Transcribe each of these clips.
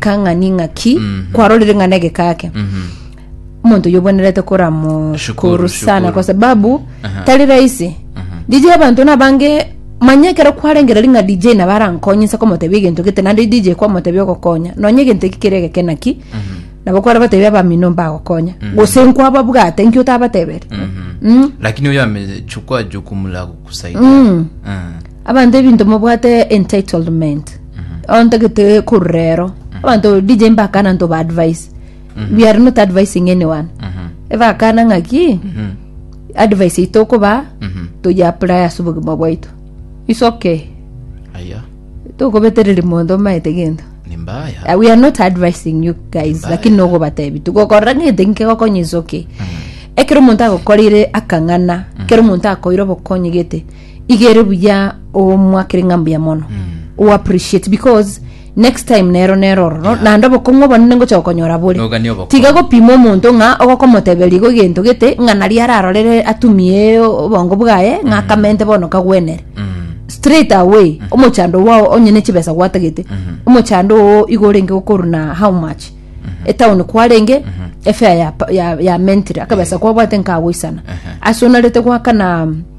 kang'ani ng'aki kwarorire ng'a negeka ake omonto oyo obwenerete koramoshukuru Shukuru, sana shukuru. kwa sababu tari rahisi dj abanto nabange manya ekero kwarengera ring'a dj nabo arankonyinse komotebia egento gete naende dj kwamotebia ogokonya nonya egento eki kere egeke naki nabo kware batebia abamino mbagokonya gose nkwababwate nki otabateberi Mm. lakini oyo amechukua jukumu la kukusaidia Mm. Mm. abanto ebinto mobwate entitlement ontagete korurero abanto dj mbakana nto ba advice we are not advising anyone ebakana ng'aki advice ito okoba toyaplaya ase obogima bwaito is okay aya tokobetereri monto omaete gento ni mbaya Uh, we are not advising you guys Mbaya. lakini nogobatebi tugokorera ng'ete nkegokonye is okay ekero omonto agokorire akang'ana ekero omonto akoire obokonyi gete igere buya omwakere ng'a mbuya mono u appreciate because next time nero nero oro no- naende obokong'u obonene ngocha gokonyora bore Nogania obokong'u. tiga gopima omonto ng'a ogokomoteberia igo egento gete ng'a naria ararorere atumie obongo bwaye ng'a akamente bono kagwenere Mm. straight away omochando wao onye ne chibesa gwatagete omochando oo igo orenge gokoruna how much etown kwarenge efare ya, ya, ya mentire akabesa kwabwate nkagoisana ase onarete gwakana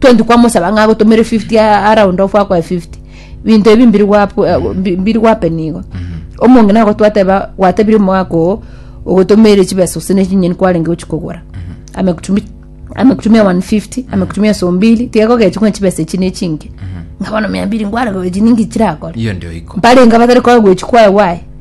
20 kwamosaba ng'a agotomere 50 a- around off akoe 50 binto ebi mbiri gwapu- eh, mbi- mbiri gwapeni igo omonge nabo twateba gwatebire omogaka oo ogotomeire chibesa gose ne chinyeni kwarenge gochi kogora amekutumi amekutumia 150 amekutumia so mbili tiga gogechi ng'a chibesa echi ne chinke ng'a bono mia mbiri ngwarogore chininki chirakore hiyo ndio iko mbarenga batari koa gwechi kwae wae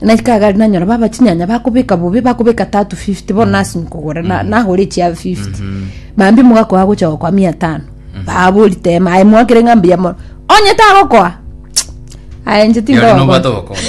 Na ekagari nanyora baba chinyanya bakobeka bobe bakobeka tatu 50 bono nasi nkogora na- nagore chia 50 mambi mogakoa gocha gokoa mia tano babori tema aye mwakere ng'a mbuya mono onye tagokoa aye nche Yari tindogo nobwate ogokora.